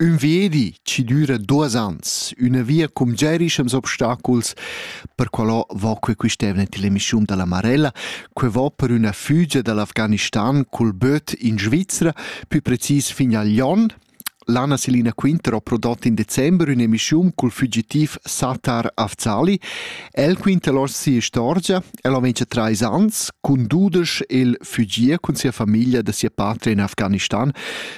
Ün viedi chi düra duos ans, üna via cum giarischems obstaculs, per qualò vo que quist'eivna till emischiun da La Marella, que vo per üna fügia da l'Afghanistan cul böt in Svizra, pü precis fin a Lyon. L'Anna Selina Quinter ho prodot in december ün'emischiun cul fugitiv Sattar Afzali. El quinta lò sia istorgia. El ho mincha trais ans, cun dudesch, el fügia cun sia famiglia da sia patria in Afghanistan.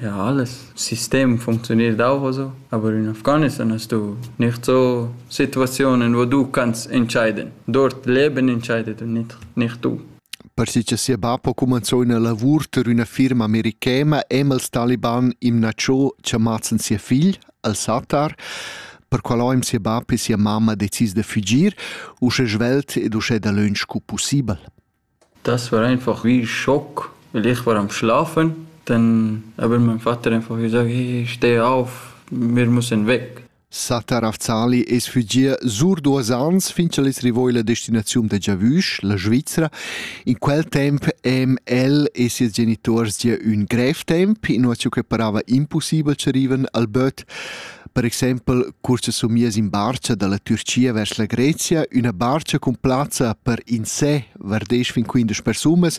Ja, das System funktioniert auch so, aber in Afghanistan hast du nicht so Situationen, wo du kannst entscheiden. Dort Leben entscheidet und nicht, nicht du. Perché che sia bab ha cumanzò una lavur per una firma americana e els taliban im Nacho chiamazen sia figl, al-Sattar, per qual im sia bab e sia mamma decis de fugir, usche svelt ed usche da lönch cu possibel. Das war einfach wie Schock, weil ich war am Schlafen, dann aber mein Vater einfach wie gesagt, hey, steh auf, wir müssen weg. Sata Ravzali es fugia sur duos ans fin ch'el es rivò illa destinaziun da giavüsch, la Svizzera. In quel temp em el e sies genituors gia ün grev temp, inua che parava impussibel che rivan al böt. Per exempel cursa somias in barcha dalla Türcia vers la Grezia, üna barcha cun plazza per in sé var 10 fin 15 persunas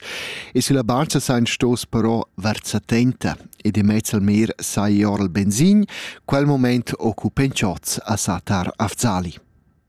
e sulla barcha sain stos però var 70 ed in mezz al mer sai or il benzin, quel moment occupen chots a Satar Afzali.